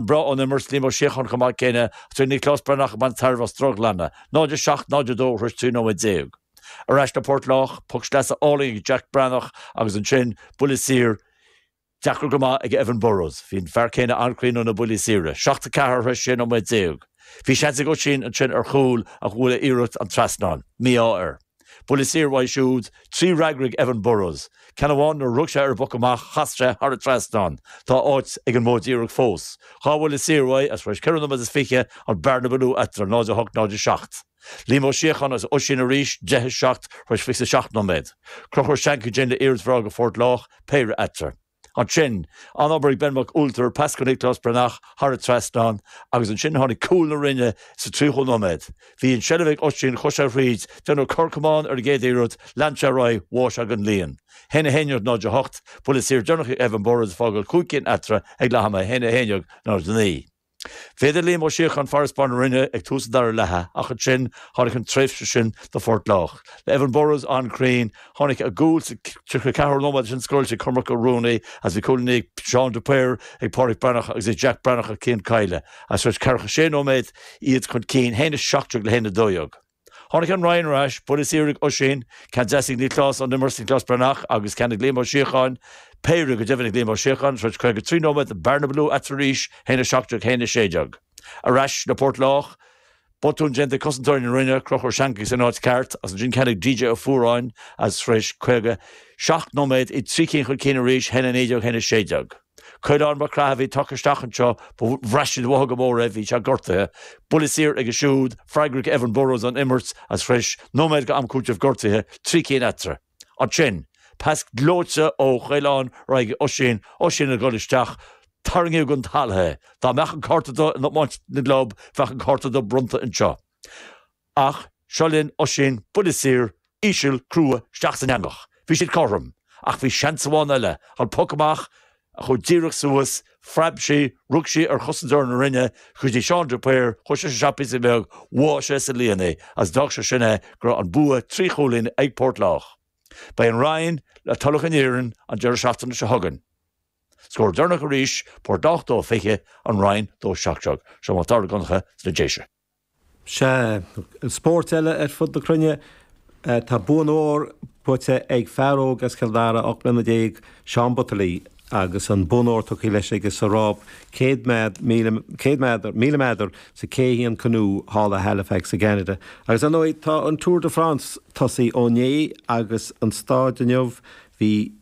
Breá ón imirt Liam Ó Síocháin chomh maith céanna agus bhí Nioclás Breathnach ag baint tairbhe as drochghlanadh, 0, 7, 0, 2, tar éis 13 nóiméad. Ar ais go Port Lách, poc sleasa álainn ag Jack Breathnach agus ansin buille saor deacair go maith ag Evan Burrows. Bhí an fear céanna an-chruinn ó na buillí saora, 7, 4, tar éis 16 nóiméad. Bhí seans ag Oisín ansin ar chúl ach bhuail a iarracht an trasnán. Mí-ádh air. Buille saor uaidh siúd, trí fhreagra ag Evan Burrows. Ceann amháin nuair a rug sé ar an bpoc amach, chas sé thar an trasnán. Tá áit ag an modh díreach fós. Dhá bhuille saor uaidh is tar éis ceithre nóiméad is fiche, an bearna ba lú eatarthu, 0, 8, 0, 7. Liam Ó Síocháin agus Oisín arís, deich is seacht, tar éis fiche is a seacht nóiméad. Conchúr Shankey le hiarracht bhreá do Phort Lách, péire eatarthu. Ansin, an-obair ag Ben Mac Ualtair, pas go Nioclás Breathnach thar an trasnán agus ansin tháinig cúl na Rinne sa 30ú nóiméad. Bhí an tseilbh ag Oisín, chuaigh sé thríd, deineadh cor camáin ar an gcéad iarracht, lean sé ar aghaidh, bhuail sé an líon. 1, 11, 0, 8, Buille saor deireanach ag Evan Burrows ag fágáil cúig cinn eatarthu ag leath ama, 1, 11, 0, 9. Mhéadaigh Liam Ó Síocháin farasbarr na Rinne ag tús an dara leatha ach ansin tháinig an tréimhse sin do Phort Lách. Le Evan Burrows an-chruinn, tháinig a gcúl sa 34ú nóiméad é sin scóráilte ag Cormac Ó Ruanaí agus bhí cúilíní ag Seán de Paor, ag Pádraic Breathnach agus ag Jack Breathnach ag Cian Kyle, is tar éis 46 nóiméad iad chun cinn 1, 17 le 1, 12. Tháinig an Rinn ar ais, buille saor ag Oisín, ceann deas ag Nioclás, ón imirt ag Nioclás Breathnach agus ceann ag Liam Ó Síocháin, péire go deimhin ag Liam Ó Síocháin, tar éis 53 nóiméad, bearna ba lú eatarthu arís, 1, 17, 1, 16. Ar ais le Port Lách, botún déanta ag cosantóirí na Rinne, Conchúr Shankey san áit ceart, is ansin ceann ag DJ Ó Fuaráin agus tar éis 57 nóiméad, iad trí cinn chun cinn arís, 1, 19, 1, 16. Caolán Mac Craith a bhí tugtha isteach anseo, bhraith siad uathu go mór é, bhí sé gortaithe. Buille saor aige siúd, freagra ag Evan Burrows ón imirt is tar éis nóiméad d'am cúitimh gortuithe, trí cinn eatarthu. Ansin, pas gleoite ó Chaolán ar aghaidh ag Oisín, Oisín ag dul isteach, tarraingíodh chun talaimh é. Dá mbeadh an cárta dubh in iomáint na gclub, bheadh an cárta dubh bronnta anseo. Ach seo linn, Oisín, buille saor, íseal, crua, isteach san eangach. Bhí siad cothrom, ach bhí seans amháin eile, an poc amach, a chur díreach suas, phreab sí, rug sí ar chosantóir na Rinne, go dtí Seán de Paor, chuaigh sé isteach píosa beag, bhuail sé sa líon é, agus d'fhág sé sin é go raibh an bua trí chúilín ag Port Lách. Beidh an Rinn le Tulach an Iarainn an deireadh seachtaine seo chugainn. Scór deireanach arís, Port Lách 2-20, an Rinn 2-17. Seo Mac Dara Mac Donncha sna Déise. Sea, i spóirt eile ar fud na cruinne, tá bonn óir buaite ag fear óg as Cill Dara, 18 mbliana, Seán Butterly, agus an bonn óir tugtha leis aige sa rás 100, 1000 méadar, sa K1 Canoe thall i Halifax i gCeanada. Agus, ar ndóigh, tá an Tour de France tosaithe ó inné agus an staid inniu, bhí.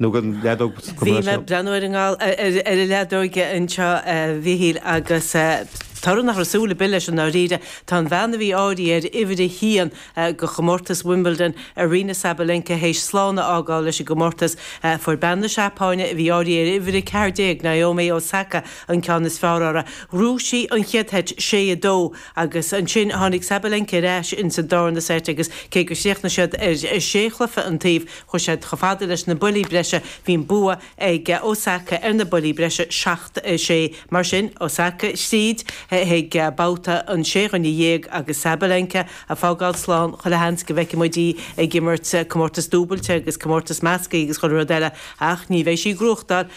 nó go leadóg sa Bhí mé ag breathnú ar an ar an leadóg anseo a Mhichíl agus toradh nach raibh súil ar bith leis i ndáiríre. Tá an bhean a bhí áirithe ar uimhir a haon go chomórtas Wimbledon, Aryna Sabalenka, théis slán a fhágáil leis an gcomórtas. Fuair bean na Seapáine a bhí áirithe ar uimhir a ceathair déag, Naomi Osaka, an ceann is fearr orthu. Bhuaigh sí an chéad seit, sé, a dó, Agus ansin tháinig Sabalenka ar ais ins an darna seit agus cé gur chríochnaigh siad ar sé chluiche an taobh chuaigh siad chomh fada leis na buillí breise. Bhí an bua ag Osaka ar na buillí breise, seacht, sé. Mar sin, Osaka thríd chuig babhta an sé dhuine dhéag agus Sabalenka a fágáil slán chuile sheans go bhfeicfidh muid í ag imirt comórtas dúbailte agus comórtas measctha agus chuile rud eile ach ní bheidh sí ag gnóthachtáil